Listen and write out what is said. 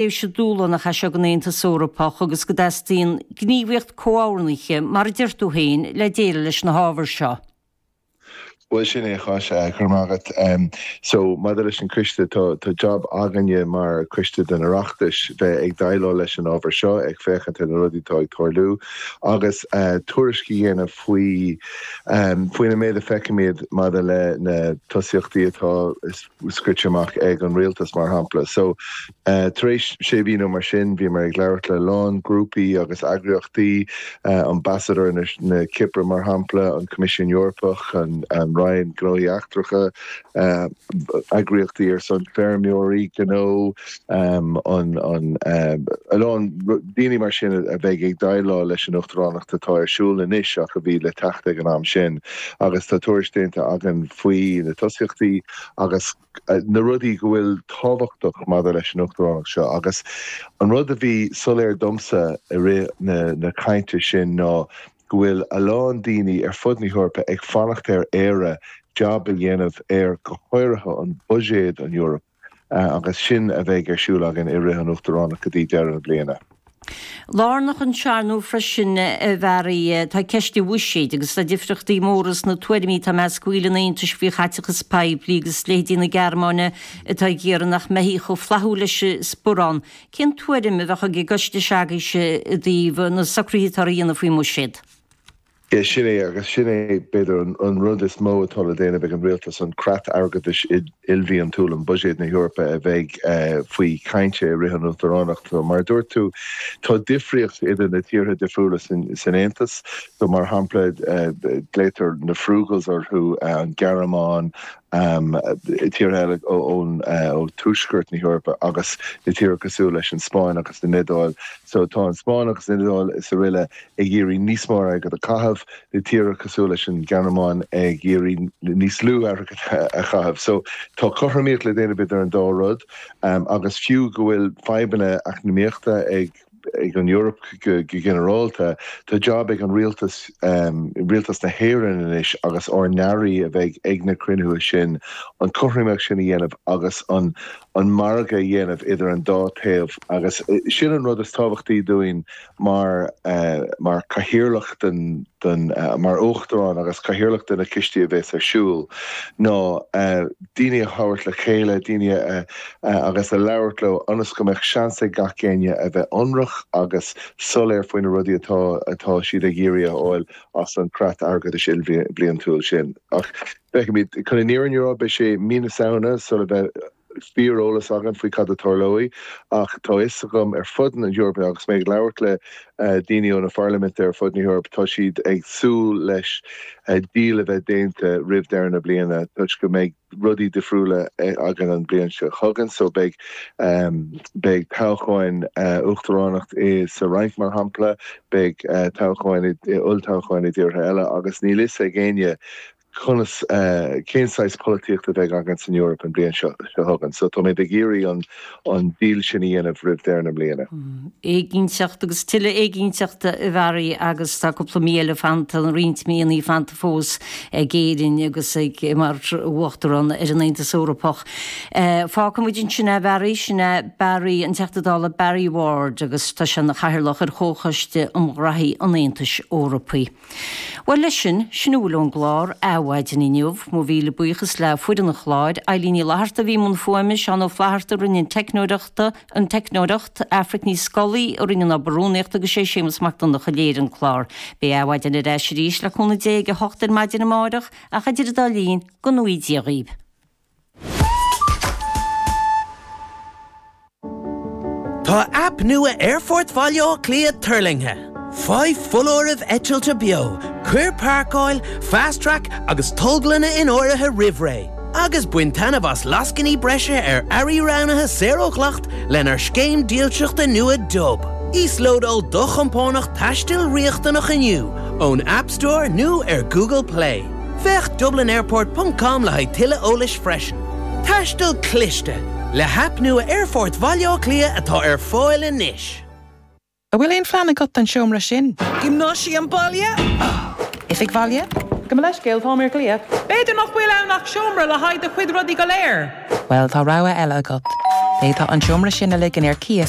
tréimhse dhúshlánach í seo don Aontas Eorpach agus go dteastaíonn gníomhaíocht comhordaithe, mar a deir tú féin, le déileáil leis na hábhair seo. Bhuel, sin é agus, go raibh maith agat. So, maidir leis an coiste, tá jab againne mar choiste den Oireachtas bheith ag déileáil leis an ábhar seo, ag féachaint ar na rudaí atá ag tarlú agus tuairisc a dhéanamh faoi, faoin méid a feicimid maidir le na tosaíochtaí atá, is. scríte amach ag an rialtas, mar shampla. So, tar éis sé mhí nó mar sin, bhíomar ag labhairt le a lán grúpaí agus eagraíochtaí, Ambasadóir na Cipire, mar shampla, an Coimisiún Eorpach, an Roinn Gnóthaí Eachtracha, eagraíochtaí ar son feirmeoirí, gnó. A lán daoine mar sin a bheidh ag déileáil leis an uachtaránacht atá ar siúl anois ach a bhí le teacht ag an am sin agus tá tuairisc déanta againn faoi na tosaíochtaí agus na rudaí go bhfuil tábhachtach maidir leis an uachtaránacht seo. Agus an rud a bhí soiléir domsa i rith na cainte sin ná go bhfuil a lán daoine ar fud na hEorpa ag fanacht ar Éire jab a dhéanamh ar, go háirithe, an buiséad, an Eoraip. Agus sin a bheidh ar siúl againn i rith an Uachtaránacht go dtí deireadh na bliana. Lárnach ansin ar ndóigh freisin, a Bharry, tá ceist an bhuiséid agus tá difríochtaí móra sna tuairimí atá i measc bhaill an Aontais faoi chaiteachas poiblí agus leithéidí na Gearmáine atá ag iarraidh nach mbeifí chomh flaithiúil leis an sparán. Cén tuairim a bheadh ag an gcoiste s'agaibhse i dtaobh na socruithe atá á dhéanamh faoin mbuiséad? Sin é, agus sin é b'fhéidir an rud is mó atá le déanamh ag an rialtas, an creat airgeadais ilbhliantúil, an buiséad na hEorpa, a bheidh faoi chaint i rith an uachtaránacht. Mar a dúirt tú, tá difríocht idir na tíortha difriúla san Aontas. Mar shampla, glaotar na frugals orthu, an Ghearmáin, tíortha eile ó thuaisceart na hEorpa agus na tíortha cosúil leis an Spáinn agus an Iodáil. Tá an Spáinn agus an Iodáil is aroile ag iarraidh níos mó airgid a chaitheamh, na tíortha cosúil leis an Ghearmáin ag iarraidh níos lú airgid a chaitheamh. So, tá cothromaíocht le déanamh idir an dá rud agus fiú go bhfuil fadhbanna eacnamaíochta ag an Eoraip go ginearálta, tá jab ag an rialtas, rialtas na hÉireann anois agus ár n-airí a bheidh ag na cruinnithe sin, an chothromaíocht sin a dhéanamh agus an margadh a dhéanamh idir an dá thaobh agus sin an rud is tábhachtaí dúinn. mar, mar cathaoirleach den, den, mar uachtarán agus cathaoirleach de na coistí a bhéas ar siúl ná daoine a thabhairt le chéile, daoine a, a, agus a labhairt leo ionas go mbeadh seans ag gach éinne a bheith ionraic agus soiléir faoi na rudaí atá, atá siad ag iarraidh a fháil as an gcreat airgeadais ilbhliantúil sin. Ach, feicfimid. Chun an fhírinne a rá, beidh sé Mí na Samhna sula bheith, fíoreolas againn faoi cad a tarlóidh ach tá fhios agam ar fud na hEorpa agus mé ag labhairt le daoine ó na parlaimintí ar fud na hEorpa, tá siad ag súil leis deal a bheith déanta roimh deireadh na bliana toisc go mbeidh rudaí difriúla againn an bliain seo chugainn so beidh beidh toghcháin uachtaránacht sa Fhrainc mar shampla, beidh toghcháin, olltoghcháin i dtíortha eile agus níl fhios ag éinne conas, cén saghas polaitíochta a bheidh againn san Eoraip an bhliain seo chugainn. So tá muid ag iarraidh an an deal sin a dhéanamh roimh deireadh na mbliana. Éiginnteacht agus tuilleadh éiginnteachta a Bharry agus tá cúpla mí eile fanta, nó roinnt míonna fanta fós ag Éirinn agus ag mar uachtarán ar an Aontas Eorpach. Fágfaidh muid ansin é a Bharry, sin é Barry, an Teachta Dála Barry Ward agus tá sé ina chathaoirleach ar chomhchoiste um ghnóthaí an Aontais Eorpaigh. Bhuel leis sin, sin a bhfuil ón gclár, Adhmhaidin, inniu. Mo mhíle buíochas le foireann an chláir, Eilín Ní Fhlatharta a bhí i mbun fuaime, Seán Ó Flatharta a rinne an teicneoireacht, an teicneoireacht, Aifric Ní Scolaí a rinne an obair rúnaíochta agus sé Séamus Mac Donnacha a léirigh an clár. Beidh Adhmhaidin ar ais arís, le cúnamh Dé, ag a hocht ar maidin amáireach, ach idir an dá linn, go ngnóthaí Dia dhaoibh! Tá aip nua Aerfort Bhaile Átha Cliath tuirlingthe! Faigh foláirimh eitilte beo, cuir páirceáil, Fast Track agus tolglanna in áirithe roimh ré, agus bain taitneamh as lascainí breise ar earraí roghnaithe saor ó dhleacht lenár scéim dílseachta nua Dub. Íoslódáil do chompánach taistil riachtanach inniu ón App Store nó ar Google Play. Féach dublinairport ponc com le haghaidh tuilleadh eolais freisin. Taisteal Cliste, le haip nua Aerfort Bhaile Átha Cliath atá ar fáil anois. An bhfuil aon phlean agat don seomra sin? Gymnasium baile? Oifig Bhaile? Gabh mo leithscéal, táim ar glaoch. B'fhéidir nach bhfuil ann ach seomra le haghaidh do chuid rudaí go léir. Bhuel, tá rogha eile agat. D'fhéadfá an seomra sin a ligean ar cíos.